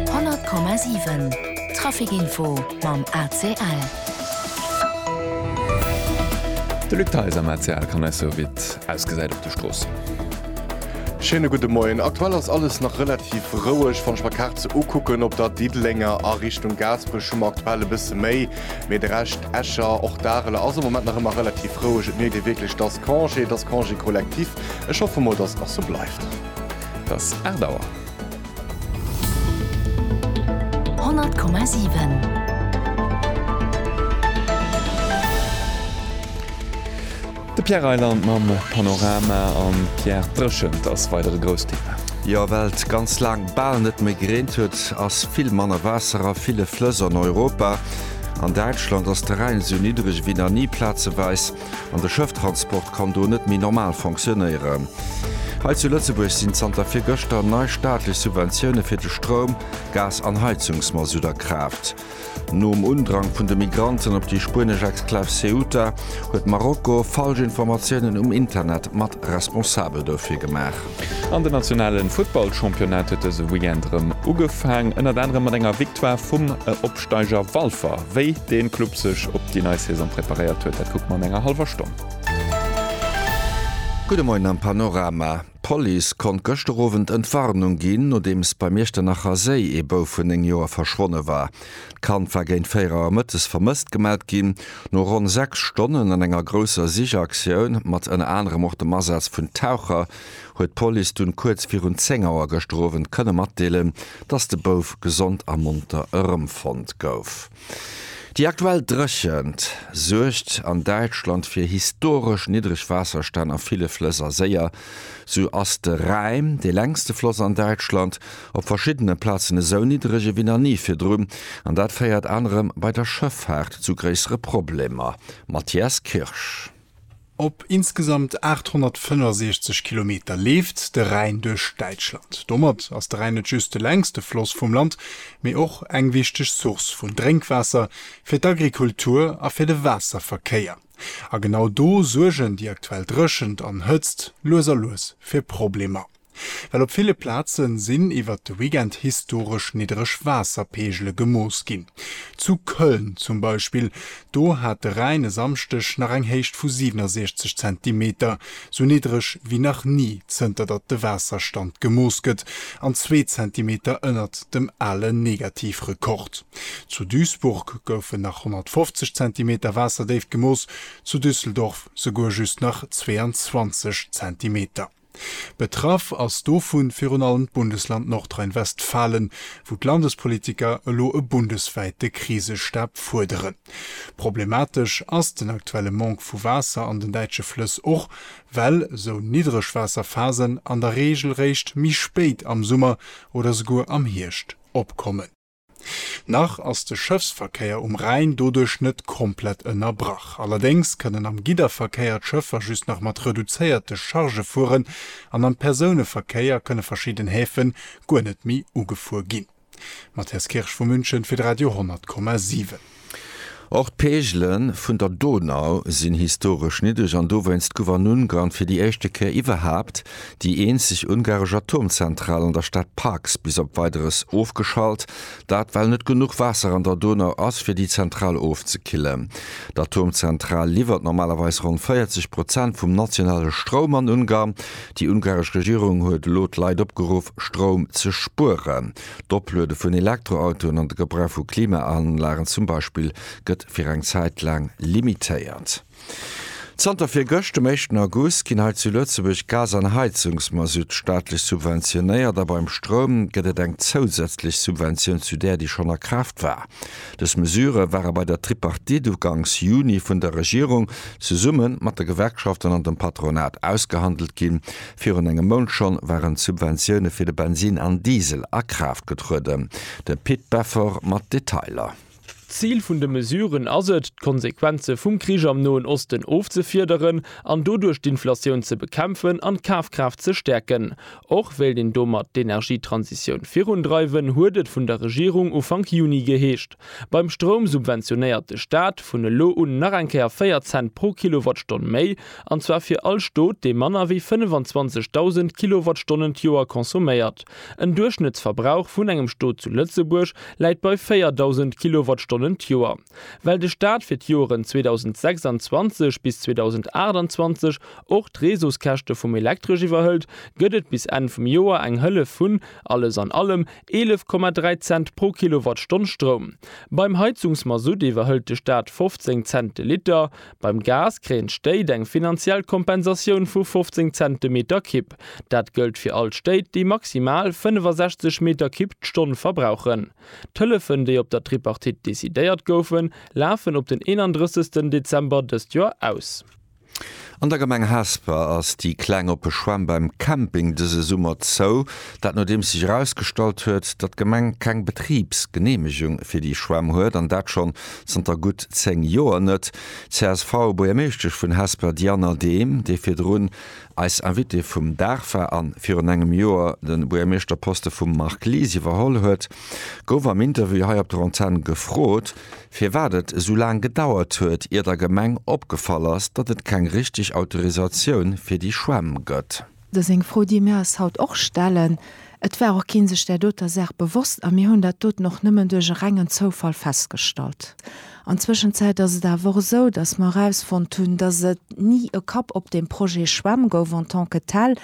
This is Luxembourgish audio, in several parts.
100,7 Trafic-Info mam ACL. De Luc Theis am ACL kann eis soe wéi et ausgesäit op de Stroossen. Schéine gudde Moien. Aktuell ass alles nach relativ roueg. Wann ech mer d'Kaart sou ukucken, op der Diddelenger a Richtung Gaasperech hu mer aktuell e bësse méi, mee de Rescht, Escher, och Dareler, ass am Moment nach ëmmer relativ roueg. Et mierkt ee wierklech, et ass Congé, et ass Congé collectif. Ech hoffe mol, datt et nach sou bleift. Et ass 8 Auer. 100,7 De Pierre Reyland mam Panorama. An, Pierre, d'Dréchent ass weider e grousst Thema. Jo, well et ganz laang bal net méi gereent huet, ass vill manner Waasser a ville Flëss an Europa. An Däitschland ass de Rhäin esou niddreg ewéi nach ni, plazeweis. an de Schëfftransport kann do net méi normal fonctionnéieren. Hei zu Lëtzebuerg sinn zanter virgëschter nei staatlech Subventioune fir de Stroum, Gas an Heizungsmasutt a Kraaft. Nom Undrang vun de Migranten op déi spuenesch Exklav Ceuta huet Marokko falsch Informatiounen um Internet mat responsabel dofir gemaach. An den nationale Futtballchampionnat huet dëse Weekend erëm ugefaang, ënnert anerem mat enger Victoire vum Opsteiger Walfer. Wéi dee Club sech op déi nei Saison preparéiert huet, dat kucke mer an enger hallwer Stonn. Gudde Moien am Panorama. D'Police konnt gëschter Owend Entwarnung ginn, nodeems beim Iechternacher Séi ee Bouf vun 9 Joer verschwonne war. D'Kand war géint 4 Auer mëttes vermësst gemellt ginn. No ronn 6 Stonnen an enger grousser Sichaktioun, mat ënner anerem och dem Asaz vun Taucher, huet d'Police dunn kuerz virun 10 Auer gëschter Owend kënne matdeelen, dass de Bouf gesond a monter erëmfonnt gouf. Déi aktuell Dréchent suergt an Däitschland fir historesch niddreg Waasserstänn a ville Flëss a Séier. Sou ass de Rhäin, dee längste Floss an Däitschland, op verschiddene Plazen esou niddereg ewéi nach ni virdrun, an dat féiert anerem bei der Schëffaart zu gréissere Problemer. Matthias Kirsch. Op insgesamt 865 Kilometer leeft de Rhäin duerch Däitschland. Domat ass de Rhäin net just de längste Floss vum Land, mee och eng wichteg Source vun Drénkwaasser fir d'Agrikultur a fir de Waasserverkéier. A genau do suergen déi aktuell Dréchent an Hëtzt lues a lues fir Problemer. Well op ville Plaze sinn iwwert de Weekend historesch niddreg Waasserpeegele gemooss ginn. Zu Köln zum Beispill, do hat de Rhäin e Samschdeg nach eng Héicht vu 67 Zentimeter, sou niddreg wéi nach ni zënter datt de Waasserstand gemooss gëtt, an zwee Zentimeter ënnert dem ale Negativrekord. Zu Duisburg goufen nach 150 Zentimeter Waasserdéift gemooss, zu Düsseldorf souguer just nach 22 Zentimeter. Betraff ass dovu virun allem d'Bundesland Nordrhein-Westfalen, wou d'Landespolitiker elo e bundeswäite Krisestab fuerderen. Problematesch ass den aktuelle Manque vu Waasser an den däitsche Flëss och, well sou Niddregwaasserphasen an der Reegel réischt méi spéit am Summer oder souguer am Hierscht opkommen. Nach ass de Schëffsverkéier um Rhäin doduerch net komplett ënnerbrach. Allerdéngs kënnen am Gidderverkéier d'Schëffer just nach mat reduzéierte Charge fueren an am Persouneverkéier kënne verschidden Häfen guer net méi ugefuer ginn. Matthias Kirsch vu München fir de Radio 10,7. Och d'Peegele vun der Donau sinn historesch niddreg an dowéinst gouf an Ungarn fir déi éischte Kéier iwwerhaapt déi eenzeg ungaresch Atomzentral an der Stad Paks bis op Weideres ofgeschalt, dat well net genuch Waasser an der Donau ass fir déi Zentral ofzekillen. D'Atomzentral liwwert normalerweis ronn 40 Prozent vum nationale Stroum an Ungarn. Déi ungaresch Regierung huet elo d'Leit opgeruff, Stroum ze spueren. D'Opluede vun Elektroautoen an de Gebrauch vu Klimaanlagen zum Beispill gëtt fir eng Zäit laang limitéiert. Zanter virgëscht, dem éischten August, ginn hei zu Lëtzebuerg Gas an Heizungsmasutt staatlech subventionéiert a beim Stroum gëtt et eng zousätzlech Subventioun zu där, déi schonn a Kraaft war. Dës Mesure ware bei der Tripartite uganks Juni vun der Regierung zesumme mat de Gewerkschaften an dem Patronat ausgehandelt ginn, Virun engem Mount schonn waren d'Subventioune fir de Bensin an Diesel a Kraaft getrueden. De Pit Beffort mat Detailer. D'Zil vun de Mesuren ass et, d'Konsequenze vum Krich am Noen Osten ofzefiederen an doduerch d'Inflatioun ze bekämpfen an d'Kafkraaft ze stäerken. Och wéilt een domat d'Energietransitioun virundreiwen, huet et vun der Regierung Ufank Juni geheescht. Beim Stroum subventionéiert de Staat vun elo un nach eng Kéier 4 Cent pro Kilowattstonn méi. an zwar fir all Stot, dee manner wéi 25.000 Kilowattstonnen d'Joer consomméiert. En Duerchschnëttsverbrauch vun engem Stot zu Lëtzebuerg läit bei 4.000 Kilowattstonnen d'Joer. Well de Staat fir d'Joeren 2026 bis 2028 och d'Reseauskäschte vum Elektresch iwwerhëlt, gëtt et bis Enn vum Joer eng Hëllef vun, alles an allem, 11,3 Cent pro Kilowattstonn Stroum. Beim Heizungsmasutt iwwerhëlt de Staat 15 Cent de Liter. Beim Gas kréien d'Stéit eng finanziell Kompensatioun vu 15 Cent de Meter Kibb. Dat gëllt fir all d'Stéit, déi maximal 65 Meter Kibb d'Stonn verbrauchen. D'Hëllefen, déi op der Tripartite decidéiert goufen, lafen op den 31 Dezember dëst Joer aus. An der Gemeng Hesper ass déi kleng oppe Schwämm beim Camping dëse Summer zou. Dat nodeems sech erausgestallt huet, datt d'Gemeng keng Betribsgeneemegung fir déi Schwämm huet, an dat schonn Zanter gutt 10 Joer net csv Buergermeeschtesch vun Hesper Diana Dehm, déi virdrun eis Invitée vum Dag war an virun engem Joer de Buergermeeschterposte vum Marc Lies iwwerholl huet, gouf am Interview hei op der Antenn gefrot, firwat et esou laang gedauert huet, ier der Gemeng opgefall ass, datt et keng richteg Autorisatioun fir déi Schwämm gëtt. Dat ass eng Fro, déi mir eis haut och stellen. Et war och kee sech där doter Saach bewosst a mir hunn dat doten och nëmmen duerch e rengen Zoufall festgestallt. An Zwëschenzäit ass et awer och esou, dass mer erausfonnt hunn, dass et ni e Kapp op deem Projet Schwämm gouf en tant que tel.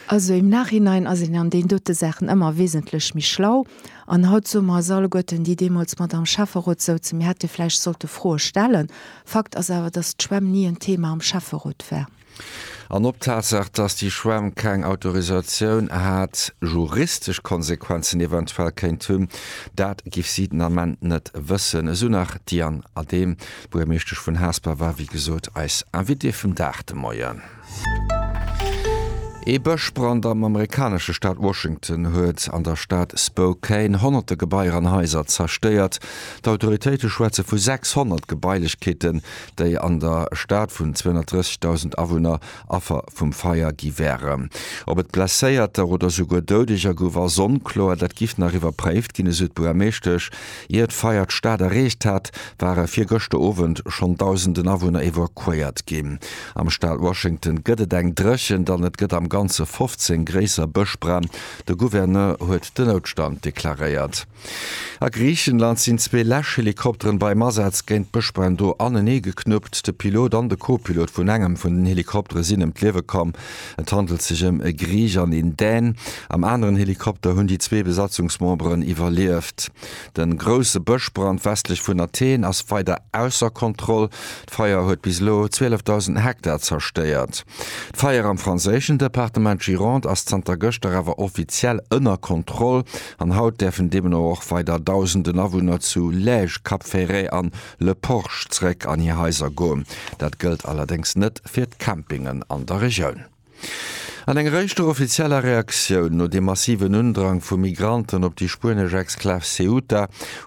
Also im Nachhinein ass een an deenen dote Saachen ëmmer wesentlech méi schlau. An haut soe mer eis alleguerten, déi deemools mat am Schäfferot souzen, mir hätte vläicht sollte Froe stellen. Fakt ass awer, dass d'Schwämm ni en Thema am Schäfferot war. An ob d'Tatsaach, dass déi Schwämm keng Autorisatioun hat, juristesch Konsequenzen eventuell kéint hunn, dat giff si den Ament net wëssen, esou nach d'Diane Adehm, Buergermeeschtesch vun Hasper war wéi gesot eis Invitée vum Dag de Moien. Ee Bëschbrand am amerikanesche Staat Washington huet an der Stad Spokane honnerte Gebaier an Haiser zerstéiert. D'Autoritéite schwätze vu 600 Gebailechkeeten, déi an der Stad vun 230.000 Awunner Affer vum Feier gi wären. Ob et Blesséierter oder souguer Doudeger gouf, ass onkloer. Dat giff nach iwwerpréift ginn, esou d'Buermeeschtesch. Ier d'Feier d'Stad erreecht hat, ware virgëschter Owend schonn Dausenden Awunner evakuéiert ginn. Am Staat Washington gëtt et eng Dréchent an et gëtt am Ganze 15 gréisser Bëschbränn. De Gouverneur huet den Noutstand deklaréiert. A Griichenland sinn zwee Läschhelikopteren beim Asaz géint Bëschbränn do anenee geknuppt. De Pilot an de Co-Pilot vun engem vun den Helikoptere sinn ëm d'Liewe komm. Et handelt sech ëm e Griich an een Dän. Am aneren Helikopter hunn déi zwee Besatzungsmemberen iwwerlieft. De grousse Bëschbrand westlech vun Athen ass weider ausser Kontroll. D'Feier huet bis elo 12.000 Hektar zerstéiert. D'Feier am franséischen Departement Gironde ass zanter gëschter awer offiziell ënner Kontroll. An haut däerfen deemno och weider Dausenden Awunner zu Lège, Cap Ferret an Le Porge zeréck an hir Haiser goen. Dat gëllt allerdéngs net fir d'Campingen an der Regioun. An enger éischter offizieller Reaktioun no dem massiven Undrang vu Migranten op déi spuenesch Exklav Ceuta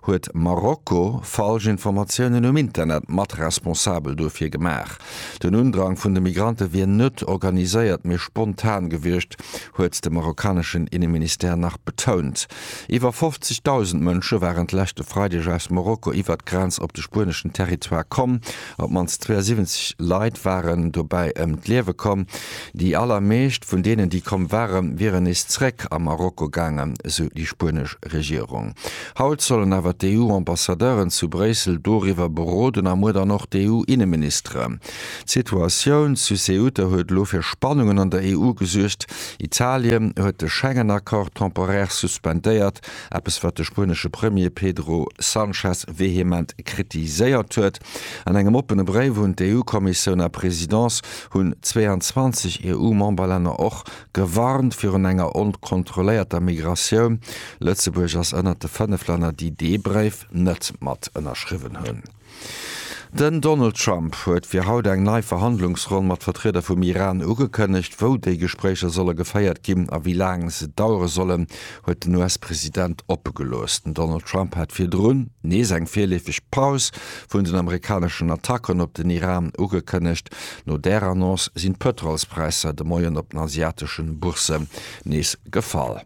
huet Marokko falsch Informatiounen um Internet mat responsabel duerfir gemaach. Den Undrang vun de Migrante wier net organiséiert, mee spontan gewiescht, huet de marokkaneschen Inneministère nach betount. Iwwer 50.000 Mënsche waren d'leschte Freideg aus Marokko iwwert d'Grenz op de spueneschen Territoire komm. Op d'mannst 72 Leit waren dobäi ëm d'Liewe komm. Déi allermeescht vun deenen, déi komm ware, wieren nees zeréck a Marokko gaangen, sou déi spuenesch Regierung. Haut sollen awer d'EU-Ambassadeuren zu Bréissel doriwwer beroden a muer dann och d'EU-Inneministeren. D'Situatioun zu Ceuta huet elo fir Spannungen an der EU gesuergt. Italien huet de Schengen-Accord temporaire suspendéiert, eppes wat de spuenesche Premier Pedro Sanchez vehement kritiséiert huet. An engem oppene Bréif un d'EU-Kommissioun a Presidence hunn 22 EU-Memberlänner och gewarnt virun enger onkontrolléierter Migratioun. Lëtzebuerg ass ënnert de 5 Länner, déi dee Bréif net mat ënnerschriwwen hunn. Den Donald Trump huet fir haut eng nei Verhandlungsronn mat Vertrieder vum Iran ugekënnegt. Wou déi Gespréicher solle geféiert ginn a wéi laang se dauere sollen, huet den US-President oppe gelooss. Den Donald Trump hat virdrun nees eng virleefeg Paus vun den amerikaneschen Attacken op den Iran ugekënnegt. No där Annonce sinn d'Pëtrolspräisser de Moien op den asiateschen Boursse Nees gefall.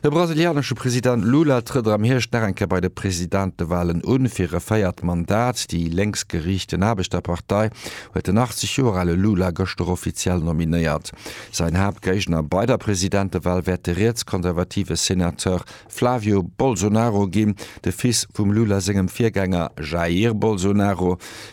De brasilianesche President Lula trëtt am Hierscht nach eng Kéier bei de Presidentewalen un, fir e véiert Mandat. Déi lénksgeriichten Aarbechterpartei huet den 80 Joer ale Lula gëschter offiziell nominéiert. Säin Haaptgéigner bei der Presidentewal wäert de rietskonservative Senateur Flávio Bolsonaro ginn, de Fils vum Lula sengem Virgänger Jair Bolsonaro.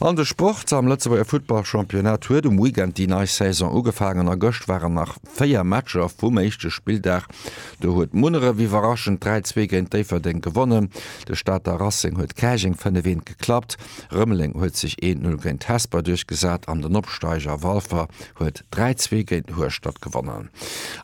An de Sport, Am Lëtzebuerger Futtball-Championnat huet um Weekend déi nei Saison ugefaangen a gëscht waren nach 4 Matcher vum éischte Spilldag. Do huet Munneref iwwerraschend 3, 2 géint Déifferdeng gewonnen. De Stater Racing huet Käerjeng 5, 1 geklappt. Rëmeleng huet sech 1, 0 géint Hesper duerchgesat an den Opsteiger Walfer huet 3, 2 géint Hueschtert gewonnen.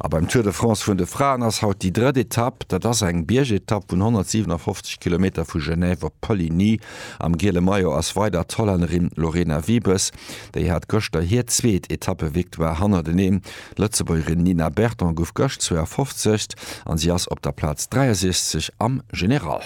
A beim Tour de France vun de Fraen ass haut déi drëtt Etapp. Dat ass eng Biergetapp vun 157 Kilometer vu Genève op Poligny. Am giele Maillot ass weider d'Hollännerin Lorena Wiebes. Déi hat gëschter hir zweet Etappe-Victoire hannerteneen. D'Lëtzebuergerin Nina Berton gouf gëscht 52. an si ass op der Plaz 63 am General.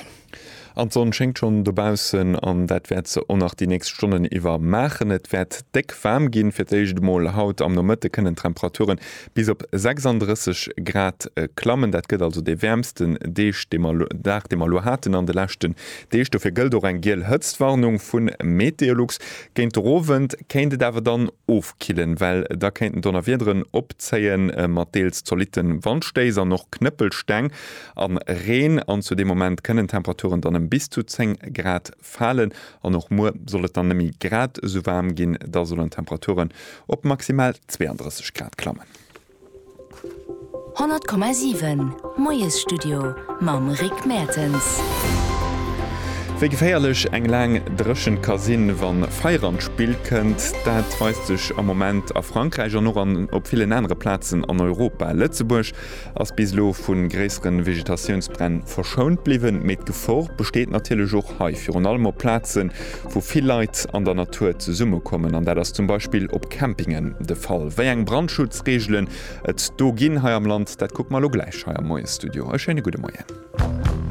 An d'Sonn schéngt schonn dobaussen an dat wäert se och nach déi nächst Stonnen iwwer maachen. Et wäert déck waarm ginn. Fir d'éischt emol haut am Nomëtte kënnen d'Temperature Bis op 36 Grad klammen. Dat gëtt also dee wäermsten Deeg, dee mer, Dag, dee mer elo haten an de leschten Deeg. Dofir gëllt och eng giel Hëtztwarnung vu Meteolux. Géint den Owend kéint et awer dann ofkillen, well da kéinten Donnerwiederen opzéie mat deels zolitte Wandstéiss an och Knëppelsteng a Reen. An zu deem Moment kënnen d'Temperaturen dann ëm bis zu 10 Grad falen an och muer soll et dann nëmme grad esou waarm ginn. Da sollen d'Temperaturen op maximal 32 Grad klammen. 100,7 Moiesstudio mam Rick Mertens. Wéi geféierlech eng laang Dréchent ka sinn, wa Feier an d'Spill kënnt, dat weist sech am Moment a Frankräich an och op villen anere Plazen an Europa. Lëtzebuerg ass bis elo vu gréissere Vegetatiounsbränn verschount bliwwen, mee d'Gefor besteet natierlech och hei, virun allem op Plazen, wou vill Leit an der Natur zesummekommen. An dat ass zum Beispill op Campingen de Fall. Wéi eng Brandschutzreegelen et do ginn hei am Land, dat kucke mer elo gläich hei am Moie-Studio. E schéine gudde Moien.